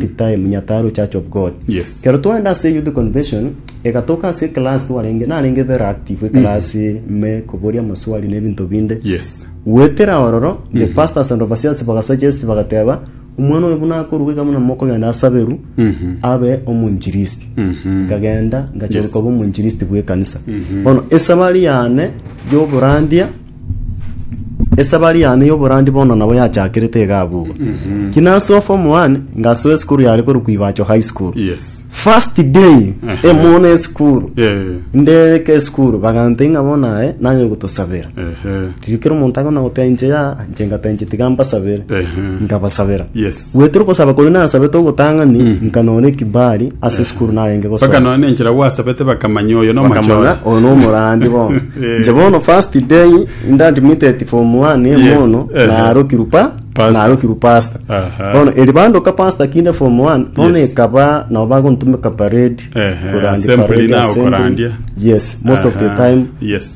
The time Nyataro Church of God. Yes. Kero twaenda ase youth convention egatoka ase class twarenge narenge very active class me koboria maswali ne binto binde. Yes. Gwetera ororo the pastors and overseers bagasuggest bagateba omwana oyo buna akoruga iga buna mokogenda asaberu abe omonjiristi. Nkagenda ngachoroka obe omonjiristi bw'ekanisa. Bono esabari yane y'oborandia Esabari yane y'oborandi bono nabo yachakerete iga abwo. Ki nasoa form 1 ngasoa esukuru yare korwa Kuibacho High School. Yes. First day Ehe. emona esukuru. Eh. Ndeke esukuru bagantei ng'a bono aye nanye gotosabera. Ehe. Riria kera omonto akona goteba inche ya inche ngateba inche tiga mbasabere. Ehe. Nkabasabera. Yes. Goetera ogosaba koria nasabete ogotang'ani, nkanora ekibali ase esukuru narenge gosoma. Mpaka nonye nenchera gwasabete bakamanya oyo bakamanya nomochore. oyo nomorandi bono Eh. nche bono first day nda admitted form one Yes, emono ehe. narokirwe pa Pastor. narokirwe pastor Aha. bono eri bandoka pastor kinde form one bono Yes. ekaba nabo bagontumeka parade Ehe, Korandi assembly parade, nao assembly. korandia. yes most of the Aha, time yes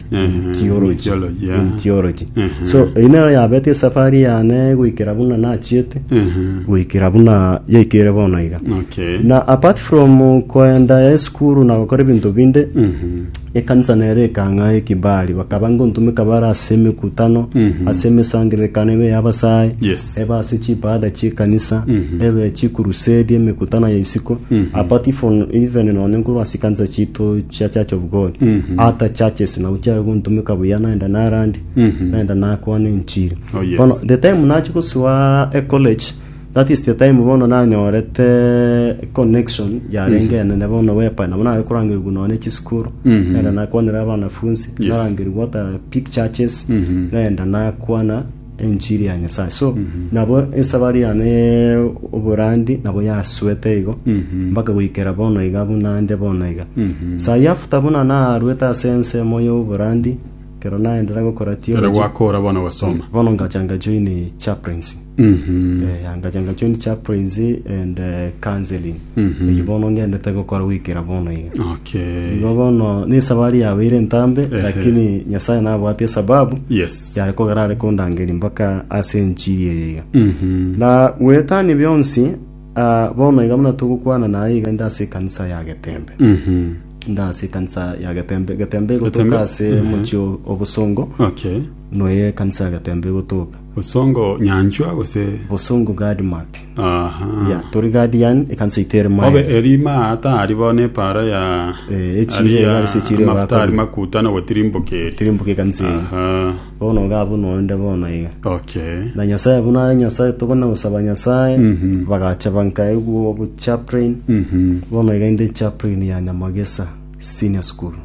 Ehe, theology theology, yeah. in theology Mhm. so eyi nero yabete esafari yane goikera buna nachiete Ehe, goikera buna yaikere bono iga okay. na apart from koenda esukuru na gokora ebinto binde Mhm, ekanisa nere ekang'a ekibari bakaba ngontumeka bare ase emekutano Mhm. ase emesangererekano ebe y'abasae Yes. ebe ase chibaada chi'ekanisa, ebe chikurusedi, emekutano ya isiko, apart ifon- even nonye nkorwa ase ekanisa chiaito chia Church of God, other churches nabo chiaye gontomeka buya naenda narandi, naenda nakwana enchiri. Oh, yes. Bono the time nachia gosoa ecollege, that is the time bono nanyorete connection yarenge enene bono whereby nabo nare korangerigwa nonye chisukuru, naenda nakwanera abanafunzi, Yes. narangerigwa hata big churches, naenda nakwana enchiri ya Nyasae. So, nabo esabari yane ye oborandi nabo yasuete igo, mpaka goikera bono iga buna nde bono iga. Sayi after buna naruete ase ensemo y'oborandi, kero naendera gokora Kero theology, gwakora bono gosoma. bono ngacha nga join chaplaincy. Mhm. Eh, ngacha nga join chaplaincy and eh, counseling. Eyio bono ngendete gokora goikera bono iga. Okay. Igo bono nesabari yabeire entambe, Ehe. lakini Nyasae nabwate esababu, Yes. Yare kogera are kondangeria mpaka ase enchiri eye iga. Na gwetania bionsi, ah, bono iga buna togokwana naye iga inde ase ekanisa ya Getembe. Inde ase ekanisa ya Getembe. Getembe igotoka Getembe? ase omochie o- o Bosongo, Okay. noyo ekanisa ya Getembe igotoka. Osongo nyanchwa gose Bosongo Gadmat. Yeah, tori gadi yani ekanisa ito ere maye. Obe erima aa tari bo nepara ya Eh, echiro aria iga ase echiro iga amafuta ari akabira. makuta na gotirimbuka eri. Tirimbuka ekanisa eye. Aha. Bono iga buna onde bono iga. Okay. Na Nyasaye buna are Nyasaye tokona gosaba Nyasaye. Mhm. Bagacha bankaigwa obo chaplain. Mhm. Bono iga inde chaplain ya Nyamagesa Senior School.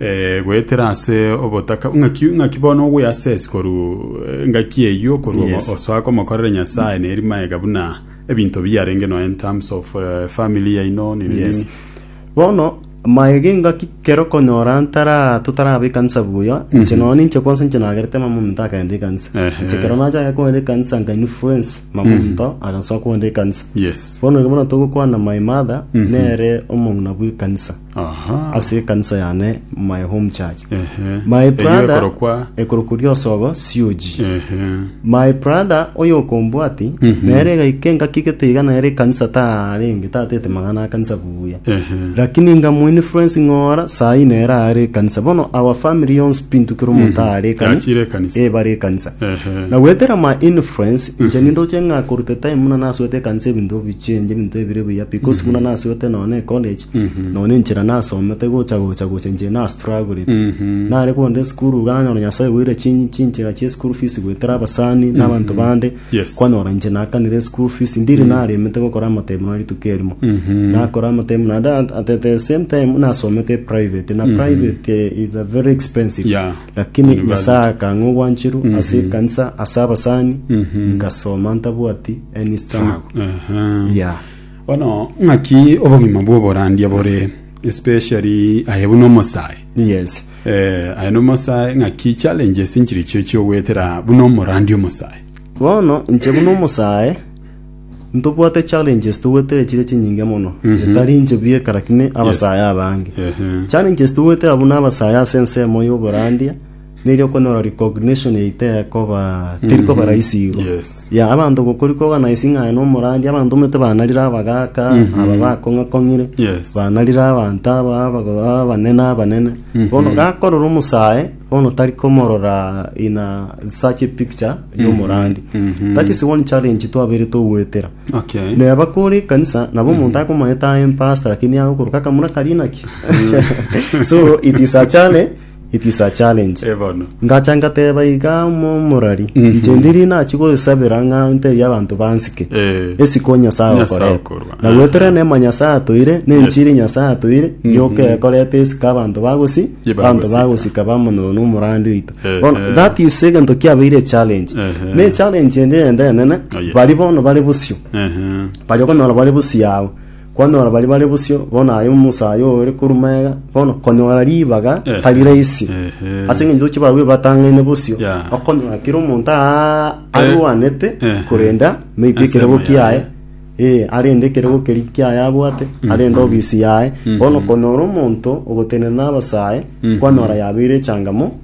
Eh, goetera ase obotaka ng'aki ng'aki bono ogwe access koru eh, ngaki eyio koru Yes. yes. osoa komokorera nyasaye neri maega buna ebinto biarenge no in terms of eh, family yaino nini Yes. nini bono maega engaki kero konyora ntara totaraba ekanisa buya inche nonya ninche kwansa inche nagerete mama omonto akagenda ekanisa Ehe. inche kero nachaka kogenda ekanisa nka influence mama omonto agasoa kogenda ekanisa yes bono ekero bono togokwana my mother nere omong'ina bw'ekanisa Aha. ase ekanisa yane my home church Ehe. my Eyio brother ekorokwa ekorokwa riosogo sioji Ehe. my brother oyo okombwati nere igaike ngaki gete iga nere ekanisa tarenge tatete magana akanisa buya Ehe. lakini ngamu influence ng'ora sayi nere are ekanisa bono our family yonsi pintu kero omonto are ekanisa Yachire ekanisa. eh bare ekanisa Ehe. na gwetera ma influence inche nindoche ng'a korute time muna nasoete ekanisa ebinto bichenje ebinto ebire buya because muna nasoete nonye college Nonya enchera nasomete gocha gocha gocha inche na struggled. Nare konde esukuru iga nanyora Nyasae oboire chin- chinchera chia school fees goetera abasani na abanto bande. Yes. Kwanyora inche nakanire school fees ndire naremete gokora amatemo na rituko erimo. Nakora amatemo naende at- at- at the same time nasomete private na private eh, is a very expensive. Yeah. Lakini University. Nyasae akang'a obwancheru ase ekanisa ase abasani ngasoma ntabwati any struggle. Aha. Yeah. Bono ng'aki obogima bw'oborandia bore especially aye buna omosae Yes. eh, aye nomosae ng'aki challenges nchiri chio chiogoetera buna omorandia omosae Bono inche buna omosae ntobwate challenges togwetera chire chinyinge mono etari inche bweka lakini abasae abange Ehe. challenges togwetera buna abasae ase ensemo y'oborandia Neri okonyora recognition eye tekoba terikoba rahisi igo Yes. ya abanto gokori kogana ase ng'a aye nomoradi abanto omanyete banarire abagaka aba bakong'akong'ire Yes. banarire abanto aba abago- abanene abanene bono gakorora omosae bono tari komorora in a such a picture y'omoradi that is one challenge twabeire togoetera Okay. neba kore ekanisa nabo omonto akomanyete aye mpasta lakini aye okoroka akamura kari naki so it is a challenge It is a challenge. Eh, bono. Ngacha ngateba iga mo- morari inche ndiri nachi gosabera ng'a ntebie abanto bansike Eh. esiko nyasae Nyasae okoreta okorwa. na gwetera Aha. nema nyasae atoire na enchiri nyasae atoire yoka ekoreta esika abanto bagosi Ye abanto bagosika. bagosika bamonone omorandi oito Ehe. Bono, that is egento kiabeire challenge Ehe. ne challenge ende ende enene Oh, yes. bari bono bari bosio Ehe. bari okonyora bari busi yago Kwanyora baria bare bosio, bono aye omosae aye ore korwa magega, bono konyora ribaga Ehe. tari rahisi. Ehe. Ase eng'encho toche barabwo batang'aine bosio, Ya. okonyora kera omonto aa- arwanete Ehe. korenda maybe Ase ekerego amo kiaye, yaye. ee, arende ekerego keria kiaye abwate, arende obisi yaye. Bono okonyora omonto ogotenena na abasae, kwanyora yabeire echangamo,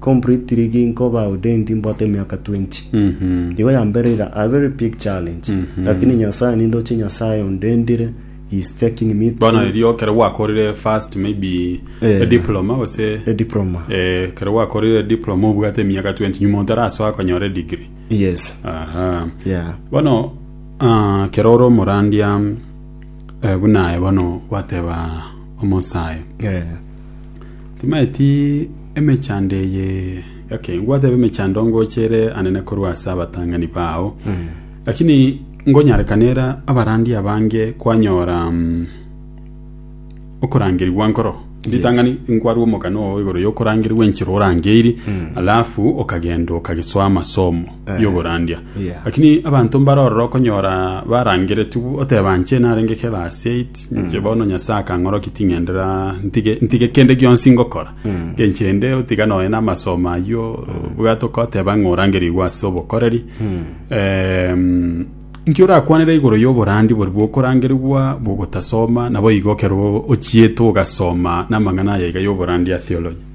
Completely ginkoba ordained mbwate emiaka 20 igo ya mbere iga a very big challenge lakini nyasaye nindoche nyasaye ondendire he is taking me bono through erio kero gwakorire first maybe Eh. a diploma gose a diploma eh, kero gwakorire a diploma obwate emiaka 20 nyuma otarasoa konyora degree yes aha yeah bono ah, kero ore omorandia eh, buna aye bono gwateba omosae yeah Timaeti emechando eye okay ngwateba emechando ngochere anene korwa ase abatang'ani bao lakini ngonyarekanera abarandi abange kwanyora mm, okorangerigwa nkoro ritang'ani nkwarwa omokano oo igoro yokorangerigwa enchera orangeiri alafu okagenda okagesoa amasomo Eh. y'oborandia. Yeah. Lakini abanto mbare ororo okonyora barangeretigwe oteba nche narenge ekerase it Mm. nche bono Nyasae akang'oroki ting'endera ntige ntige kende gionsi ngokora. Mm. Ngenche ende otiga noe n'amasomo ayio bwate okoteba ng'a orangerigwe ase obokoreri. Mm. Em, nki orakwanera igoro y'oborandi bori bwokorangerigwa bwogotasoma nabo igo ekero ochiete ogasoma namang'ana aya iga y'oborandi ya theology.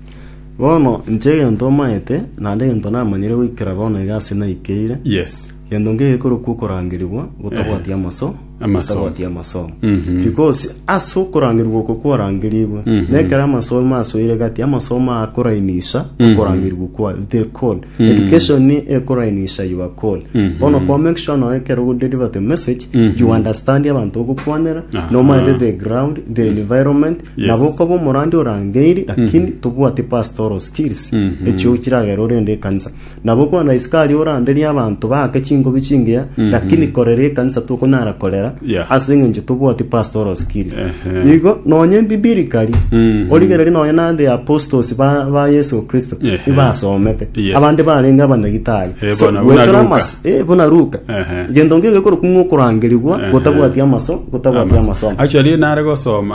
Bono inche egento omaete, naende egento namanyire goikera bono iga ase naikeire, Yes. gento nkeiyo gekorokwa okorangerigwa gotabwati amaso, Amasomo. gotabwati amasomo. Mhm. Because ase okorangerigwa oko kwarangerigwe, Mhm. nekero amasomo asoire gati, amasomo akorainisha Mhm. okorangerigwa kwa the call. Mhm. Education ekorainisha your call. Mhm. Bono kwa make sure noe ekero ogo deliver the message, Mhm. you understand abanto ogokwanera, Aha. nomaete the ground, the environment, Nabo okoba omorandi orangeiri lakini tobwati pastoral skills echio chiragera orende ekanisa nabo okwana isiko aria oranderie abanto baake chingobi chingiya lakini korera ekanisa tokonyara korera Yeah. ase eng'encho tobwati pastoral skills Ehe. igo nonye bibirikari Mhm. origereri nonye na the apostles ba, ba yesu kristo Ehe. ibasomete Yes. abande barenge abanyagitari Eh, so bona- bona gwetora Luka. amas eh, bona ruka Ehe. gento ngegekorokwa ng'okorangerigwa Ehe. gotabwati amaso gotabwati amasomo actually nare gosoma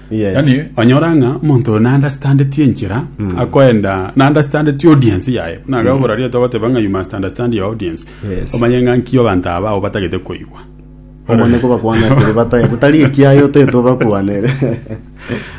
Yes. yani onyora ng'a omonto na understandeti enchera akoenda na understandeti audience yaye buna aga ogora rieta ogoteba ng'a you must understand your audience Yes. omanye ng'a nki abanto aba ao batagete koigwa omone kobakwana tiri batae gotari ekiaye otete obakwanere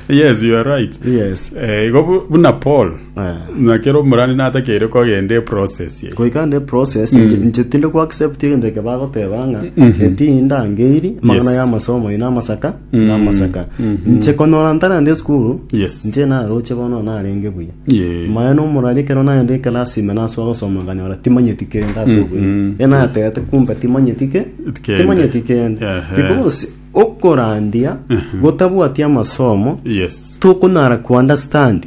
yes you are right yes Eh, igo bu- buna paul Eh. nakero omorani natakeire kogenda eprocess ye goika ne process nche- nche tinde kwa accept egento eke bagoteba ng'a etinda ngeiri magana Yes. ya amasomo ina amasaka na amasaka inche konora ntarande esukuru Yes. inche naroche bono narenge buya Yeah. maya nomorari ekero nagenda ekelasi ime nasoa gosoma nkanyora timanyeti kende ase obweng'u e natete kumbe timanyeti ke Kende. timanyeti kende Ehe. because okorandia gotabwati amasomo yes tokonyara kuunderstand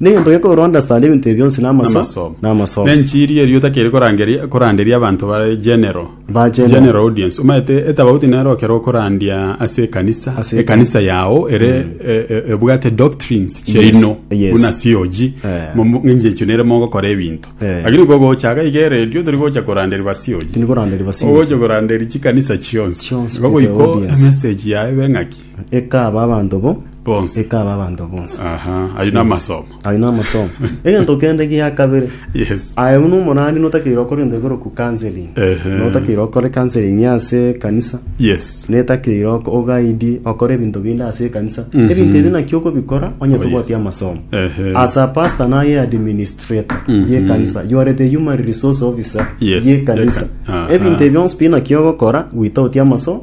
Negento gekogera ounderstand ebinto ebi bionsi namasomo. Namasomo. Na enchiri erio otakeri korangeria koranderia abanto bare general. Ba general. General audience. Omaete etabauti nero okero okorandia ase ekanisa. Ase eka- ekanisa yao ere e- e- ebwate doctrines chiaino. yes. Buna COG. Eh. Momo- ng'enche echo nere mogokora ebinto. Eh. Lakini kogocha iga iga eredio tori gocha koranderi ba COG. Tindi koranderia ba COG. Ogocha koranderi chikanisa chionsi. Chionsi, Igo goiko audience. emessage yaye ebe ng'aki. Ekaba abanto bo. Bonsi. Ekaba abanto bonsi. Aha, ayio namasomo. Ayo namasomo. Egento kende gia kabere. Yes. Aye buna omorani notakeire okore egento ekoroku counseling. Ehe. Notakeire okore counseling ase ekanisa. Yes. netakeire oko- ogaidi okore ebinto binde ase ekanisa ebinto ebi naki okobikora onye Oh, tobwati yes. amasomo Ehe. as a pastor naye administrator yekanisa you are the human resource officer Yes, yekanisa yeka- aha. ebinto ebionsi pi naki ogokora gwita oti amasomo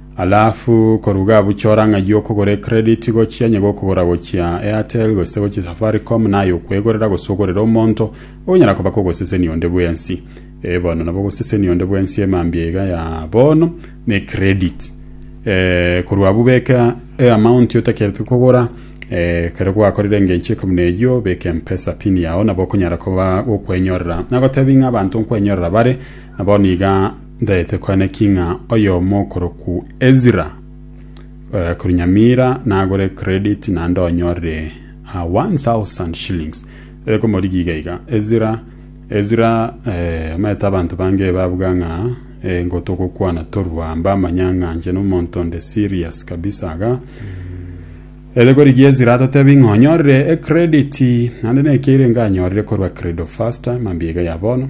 Alafu koruga abwo chora ng'ai y'okogora ecredit gochia onye gokogora gochia Airtel gose gochia Safaricom naye okwegorera gose ogorere omonto onyara koba kogosesenia onde bwensi. Eh bono nabo ogosesenia onde bwensi emambia iga ya bono na ecredit. Eh korwa abwo beka e amount otakerete kogora eh ekero gwakorire engencho eke buna eyio beka mpesa pin yao nabo okonyara koba gokwenyorera. Nagotebia ng'a abanto nkwenyorera bare na bono iga Ntaete kwane ki ng'a oyomo okorokwu Ezra korwa Nyamira nagore credit naende onyore ah, 1000 shillings ere komorigia iga iga Ezra Ezra eh, omanyete abanto bange ebabuga ng'a eh, ngo togokwana torwa mbamanya ng'a inche nomonto onde serious kabisa iga Ere korigia Ezra atatebi ng'a onyorire ecredit naende naki erenge anyorire korwa Credo Faster mambia iga ya bono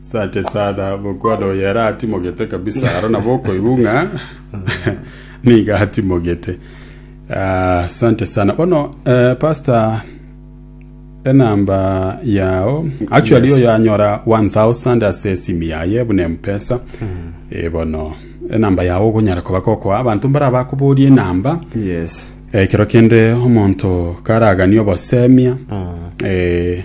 Sante sana mokwano oyo ere atimogete kabisa aro nabo okoigwa ng'a niga atimogete Ah, sante sana bono eh, pastor enamba yao actually Yes. oyo anyora 1000 ase esimu yaye buna empesa Eh, bono enamba yao ogonyara koba kokoa abanto mbara bakoboria enamba yes ekero kende omonto karagania obosemia eh,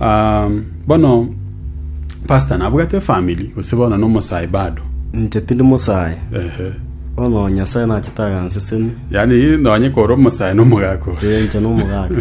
Ah, bono pastor nabwate family gose bono nomosae bado Inche tindi mosae. ehe Bono Nyasae nachete aganseseni. yani nonye kore omosae nomogaka ore. Ee, inche nomogaka.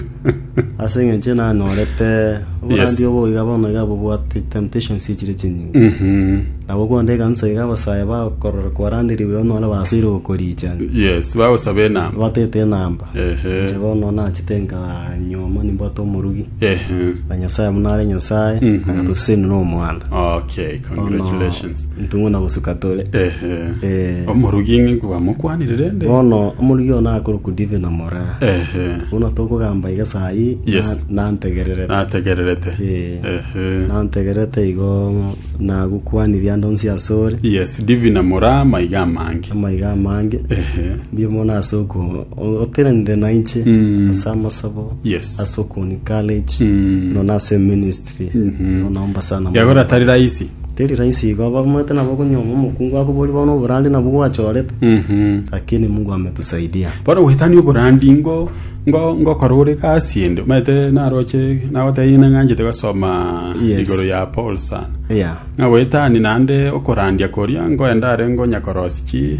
Ase eng'encho nanyorete oborandi Yes. obo iga bono iga bobwate temptations echire chinyinge. Mhm. Nabo konde ekanisa iga abasae bakorora kwaranderigwe onore basoire gokorichani. yes bagosaba enamba Batete enamba. Ehe. Inche bono nachete nkanyuoma nimbwate omorugi, Ehe. na Nyasae buna are Nyasae, Mhm. agatusesenia n'omwana. Okay, Bono congratulations. ntung'una gosuka tore. Ehe. Eh. Omorugi ng'e kwamokwanire rende? Bono omorugi oyo nakorokwa Divine na Moraa. Ehe. Buna tokogamba iga saa hii, na- Yes. nantegererete. Nategererete. Eh. Ehe. Nantegererete igo nagokwanirie ande onsi asore, Yes, Divina Moraa maiga amange. amaiga amange. Ehe. Mbuya mono ase oko- o- oteranire nainche ase amasabo Yes. ase okoni courage nono ase ministry nono naomba sana mono. yagora tari rahisi teri rahisi igo abamate nabo okonyoma omokungu akobori bono oborandi nabwo gwachorete lakini mungu ametusaidia bono goetania oborandi ngo ngo ngokora ore gasi ende omanyete naroche nagotebia ng'a nganchete gosoma Yes. igoro ya paul sana yeah. ng'a goetania naende okorandia koria ngoenda are ngonya korosi chi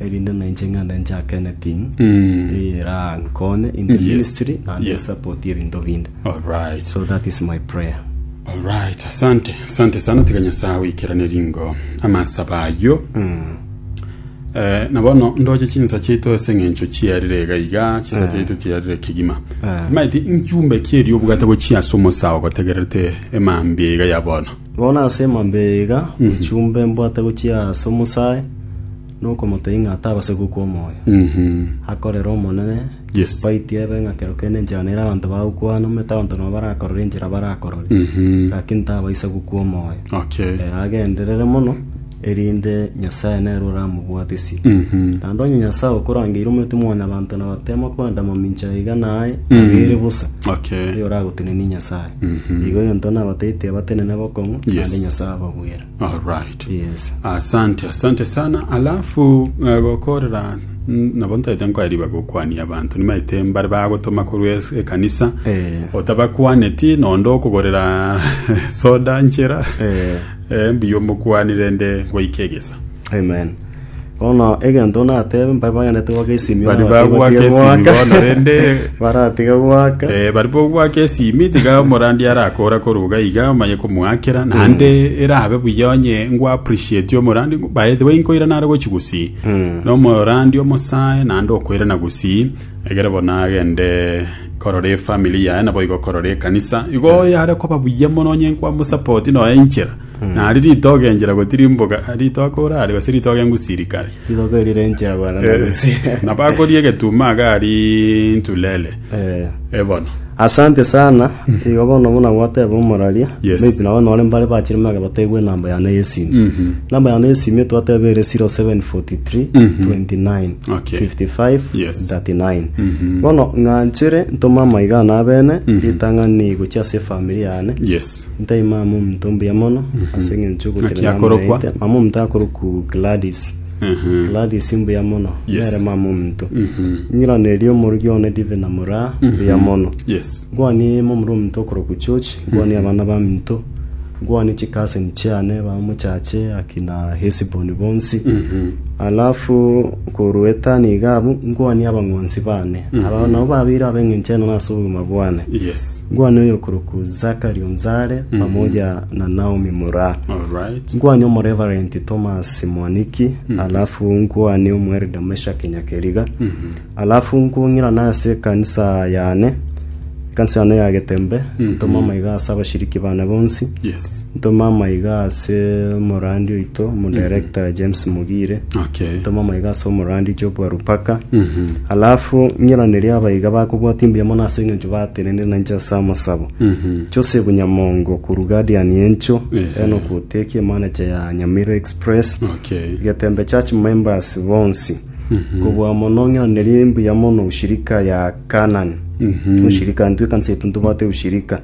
erinde na inche ngende nchake anything erankonye in the Yes. ministry and Yes. support ebinto binde alright so that is my prayer alright asante asante sana tiga nyasaye oikerane ringo amasaba ayo Eh, na bono ndoche chinsa chiaito ase eng'encho chiarire iga iga chinsa chiaito chiarire kegima Eh. timaeti nchumbe kierio obwate gochia ase omosao gotegerete emambia iga ya bono Bono ase emambia eye iga nchumbe mbwate gochia ase omosae na okomotebia ng'a atabase gokwa omoyo. Akorere Omonene, Yes. despite ebe ng'a kero kende enchera nere abanto bagokwana, omanyete abanto nabo barakorore enchera barakorore, lakini tabaisa gokwa omoyo. Okay. Ere agenderere mono erinde Nyasae nere oramobwatisie. Naende onye Nyasae okorangeire omwete mwanyabanto na batema kwenda mamincha aiga naye abeire bosa, Okay. erio oragotenenie Nyasae. Igo egento nabateite abatenene bokong'u, Yes. naende Nyasae abagwera. Alright. Yes. asante asante sana alafu eh, gokorera mm, nabo ntaete nkoariba gokwania abanto nimaete mbare bagotoma korwa es- ekanisa Eh. otabakwaneti nondo okogorera soda nchera Eh. Eh, mbuya omokuani rende ngoike egesa. Amen. Bono egento natebe mpare bagandete goaka esimi Bari bono batiga bagwaka esimi goaka. bono rende baratiga goaka Eh, bari bogwaka esimi tiga omorandi arakora koruga iga omanye komoakera naende erabe buya onye ngwa appreciate omorandi by the way nkoirana are gochi gusii nomorandi omosae naende okoirana gusii Egere bono agende korora efamily yaye naboigo korora ekanisa igo yare koba buya mono onye nkwamosapoti noe enchera nari ritogo enchera gotirimboka ritogo orare gose ritogo engusirikare Rirogo eri renchera bwana na gusira. nabakoria egetumo aga ari ntulele Eh. ebono Asante sana, igo bono buna gwateba omoraria, Yes. maybe nabo nore mbare bachire mage batebwe enamba yane y'esimi. Enamba yane y'esimi twateba ere 0743 29 Okay. 55 Yes. 39. Bono ng'anchere ntome amaiga ane abene, ritang'ani gochia ase efamiri yane, Yes. Ntai mama omonto mbuya mono ase eng'encho Naki ogokera mama akorokwa? yaete. Mama omonto akorokwa Gladys. Ehe. Gladys mbuya mono. Yes. Nere mama omonto. Ng'iraneria omorweki one Dive na Muraa mbuya mono. Yes. Nkwanie momura omonto okorokwa George, nkwanie abana baminto, nkwanie chicousin chiane bamochache akina Hesbon bonsi. Alafu korwa etano iga abwo, nkwanie abang'wansi bane. Abao nabo babeire ab'eng'encho enene ase obogima bwane. Yes. Nkwane oyokorokwa Zakari onzare, pamoja na Naomi moraa. Alright. Nkwane omoreverenti Tomasi mwaniki, alafu nkwane omwerida Meshaki Nyakeriga, alafu nkong'irana ase ekanisa yane, ekanisa yane ya Getembe, ntoma amaiga ase abashiriki bane bonsi, Yes. Ntoma amaiga ase omorandi oito omodirector James Mugire. Okay. Ntoma amaiga ase omorandi Job Warupaka. Alafu ng'iranerie abaiga bakobwatia mbuya mono ase eng'encho batenenire nainche ase amasabo. Joseph Nyamongo korwa Guardian encho, Ehe. Enock Oteki emanager ya Nyamira Express. Okay. Getembe Church members bonsi. Kobua mono ng'iranerie mbuya mono ushirika ya Canaan. Ushirika intwe ekanisa yaito ntobwate ushirika.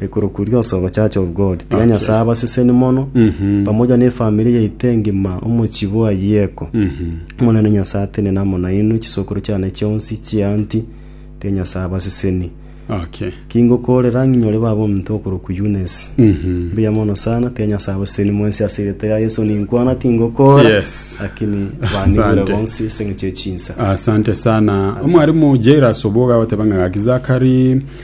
Ekero kuria osogo Church of God, tiga Nyasae abaseseni mono, pamoja na efamiri yaito engima, omochie bwa Yeko. Omonene Nyasae atenene amo nainwe, chisokoro chiane chionsi, chianti, tiga Nyasae abaseseni. Okay. Kingokorera ng'inyore baba ominto okorokwa Eunice. Mbuya mono sana, tiga Nyasae abaseseni mwensi ase erieta ria Yeso ninkwana tingokora, Yes. lakini banigure Asante. bonsi ase eng'encho ye chinsa. Asante sana. Omwarimu Jairus Oboga oteba ng'a gaki Zakari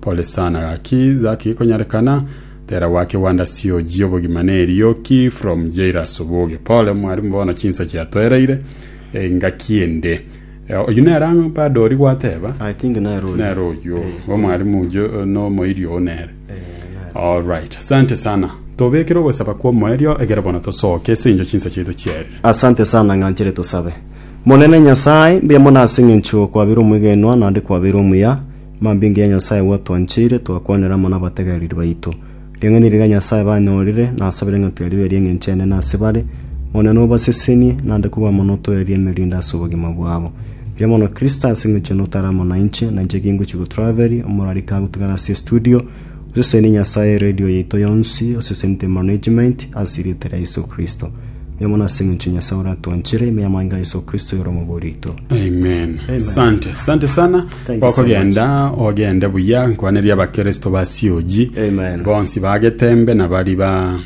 Pole sana gaki Zaki gikonyarekana tera gwake Wanda sioji obogima ne erioki from Jairus oboge pole mwarimu bono chinsa chiatoereire engaki ende Eh, oyio nere ang'o bado ori gwateba I think nero oyo. nere oyio Eh, omwarimu jo nomoiri oo nere eh, nero. alright asante sana tobekere ogosaba kwa omoerio egere bono tosoke ase encho chinsa chiaito chiarire asante sana ng'anchere tosabe monene nyasaye mbuya mono ase eng'encho kwabeire omwegenwa naende kwabeire omuya Mambinga ya Nyasae gwatwancheire, twakwanera amo nabategereri baito. Ring'ana riria Nyasae banyorire, nasabire ng'a tiga ribe ri'engencho enene ase bare, Omonene obasesenie, naende kobua mono otoererie emerinde ase obogima bwabo. Mbuya mono Kristo ase eng'encho notare amo nainche, nainche ki ngochia gotraveria, omorwari kagotugana ase estudio, Osesenie Nyasae eredio yaito yonsi, osesenete management, ase erieta ria Yeso Kristo. Nigo mono ase engencho Nyasae oratwanchire, ime y'amang'e a Yeso Kristo yore omobe orito. Amen. Sante, sante sana. Thank you so Okogenda ogende buya nkwaneria abakristo ba COG Amen. bonsi bagetembe na bari ba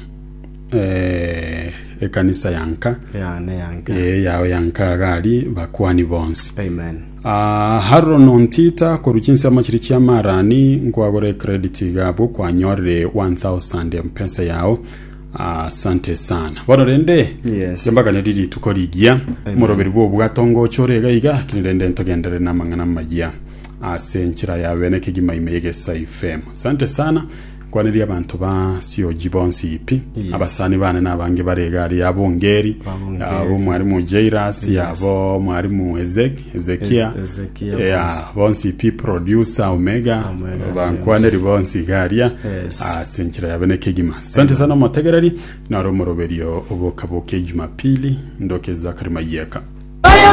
eh, ekanisa yanka Yane yanka. eh, yao yanka gari bakwani bonsi. Amen. Haroro nontita korwa chinsemo chiria chia marani nkwagore ecredit iga abwo kwanyorire 1000 mpesa yao asante sana bono rende Yes. yambaganeri rituko rigiya moroberi bwobwato ngocha ore iga iga kini rende ntogenderere namang'ana amaya ase enchera yabe nekegima ime y'egesaifm asante sana Kwaneria abanto ba Sioji bonsi pi, abasani bane na abange bare egari yabo Ngeri, yabo mwarimu Jairus, yabo mwarimu Ezek- Ezekia, ya bonsi pi Producer Omega, bankwaneri bonsi iga aria ase enchera yabe ne kegima. Sante sana omotegereri, naro omoroberio oboka boka ejumapili, ndoke Zachary Mayiaka.